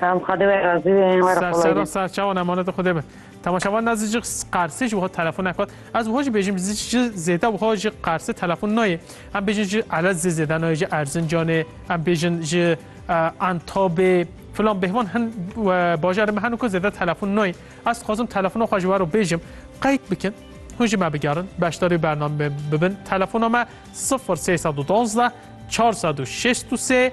Tamam Xwedê wê razî bê yên were Serçe kolayî. rasa çawan emanetê Xwedê be. Temaşevan na zî ji Qersê ji wiha telefon neket. Ez wiha jî bêjim zî ji zêde wiha ji Qersê telefon nayê. Em bêjin ji Elez zî zêde nayê ji Erzincanê em bêjin ji eh, Antabê filan bêhman hin eh, bajarê me heno ku zêde telefon nayê. Ez dixwazim telefona xwe ji wero bêjim. Qeyd bikin. Hûn jî me bigerin, beşdarî bernameyê bibin. Telefona me 0312 463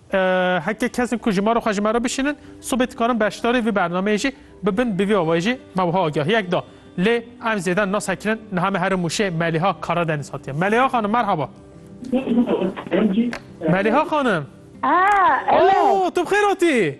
Heke kesên ku ji mar û xwe ji me re bişînin, sibê dikarin beşdarî vî bernameyê jî bibin. Bi vî awayî jî me wiha agahiyek da. Lê em zêde nase kirin. Niha me here Mûşê Melîha Karadenîz hatiye. Melîha xanim merhaba. Melîha xanim. Aa, tu bi xêr hatî?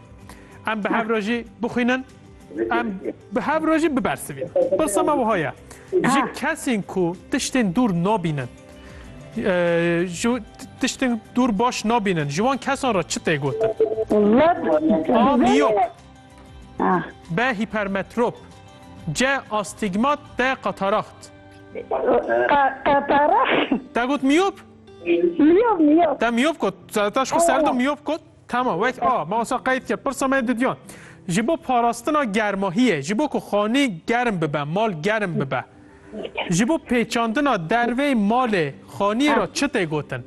Em bi hev re jî bixwînin. Em bi hev re jî bibersivîn. Pirsa me wiha ye. Ji kesên ku tiştên dûr nabînin tiştên dûr baş nabînin ji wan kesan re çi tê gotin? A miyop B hipermetrop C astigmat D kataraxt Kataraxt Te got miyop? Miyop miyop Te miyop got. Te şku serde miyop got. Tamam wek a ma wasa qeyd kir pirsa me didiyan. Ji bo parastina germahiyê, ji bo ku xanî germ bibe, mal germ bibe. Ji bo pêçandina dervê malê xaniyê ra çi tê gotin?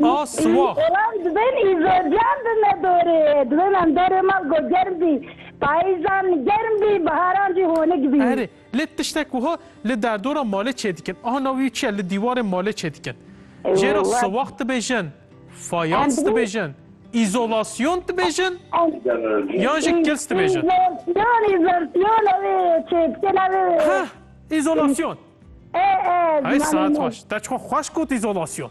A siwax. Belam dibên îzodiyan bi me dorê. Dibên em dorê mal ku germ bî. Payîzan germ bî, biharan jî honik bî. Erê, Lê tiştek wiha li derdora malê çêdikin. Ana wî çi ye? Li dîwarê malê çêdikin. Jê re siwax dibêjin, fayans dibêjin, îzolasyon dibêjin yan jî kils dibêjin? Îzolasyon, îzolasyon ew ê çêdikin ew ê. Heh, îzolasyon. Ê, ê. Hey saet baş. Te çixwe xweş got îzolasyon.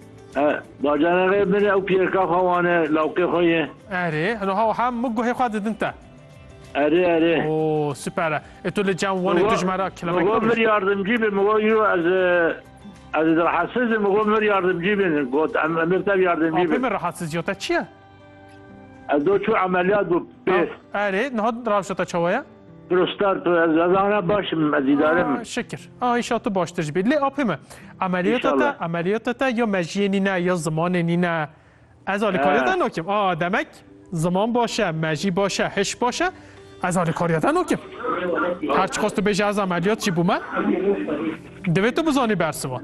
Bacanexê min e û piyêrka xwe wan e, lawkê xwe ye. Erê, no ha wiha min guhê xwe didin te. Erê, erê. Oo, super e. E tu li cem wanê tu ji me re kilemek Migo mir yardımcı bin, migo yo ez ez rahatsızım, migo mir yardımcı bin. Got em emir tev yardımcı bin. Apê min rahatsız yo te çi ye? Edo çû emeliyat bû pêst. Erê niha rawşa te çawa ye? Prostar ez ana baş im ez îdare im. Şikir. A îşa tu baştir jibî. Lê apê me emeliyata te emeliyata te ya mejiyê nîne ya zimanê nîne. Ez alîkariya te nakim. A demek ziman baş e, mejî baş e, hiş baş e. Ez alîkariya te nakim. Her çiqas tu bêje ez emeliyat jî bûme. Divê tu bizanî bersivan.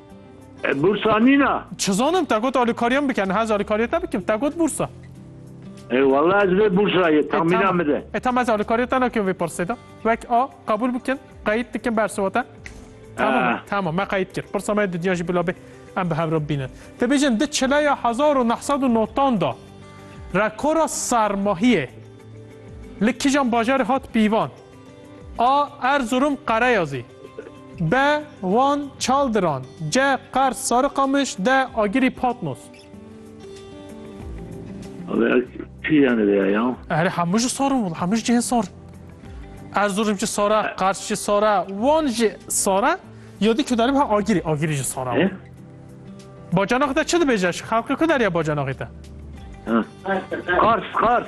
Bursa nîna. Çizanim te got alîkariyan bike niha ez alîkariya te bikim te got bursa. E wala ez vê bursa ye tamîna min de. E tamam ez alîkariya te nakim vê pirsê de. Wek a qebûl bikin qeyît dikin bersiva te. Tamam tamam me qeyît kir. Pirsa me dinya jî bila bê em bi hev re bibînin. Te bêjin di çileya hezar û neh sed û notan da rekora sermahiyê li kîjan bajarê hat pîvan? A Erzurum Qereyazî B Van Çaldiran C Qers Sarıkamış D Agirî Patmos Vêya çi yani vêya ya? Erê hemû ji sar in hemû ji cihên sar in. Erzurum jî sar e, Qers jî sar e, Wan jî sar e. Ya dî Kûdarî ha Agirî, Agirî jî sar e. Bacanaxê te çi dibêje? Xelkê ku derya bacanaxê te? Qars, Qars.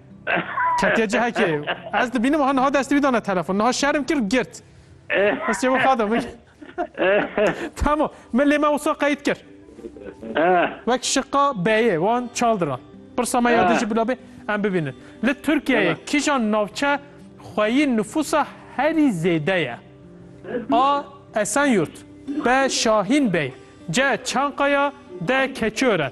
Ketiye cihekê. Ez dibînim ha niha destê wî dane telefon. Niha şerm kir girt. Ez çê wiha da min. Tamam. Min lê me wisa qeyîd kir. Wek şiqa beyê wan çal diran. Pirsa me ya dijî bila bê em bibînin. Li Tirkiyeyê kîjan navçe xweyî nifûsa herî zêde ye? A. Esenyurt B. Şahîn Bey C. Çankaya D. Keçiören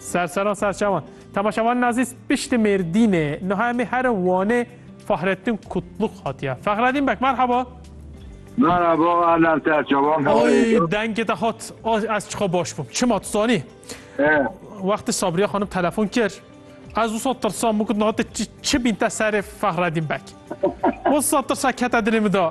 Serseran serçewan. Temaşevan nazîs pişti mêrdînê. Niha emê herin Wanê Fahrettin Kutluk hatiye. Fahredîn Bek merhaba. Merhaba Erlen Serçevan. Oy dengê te hat. Ez çiqa baş bûm. Çima tu zanî? Wextê Sabriye xanim telefon kir. Ez wisa tirsan bû ku nate çi bîn te serê Fahredîn Bek. Wisa tirsa kete dilê min de.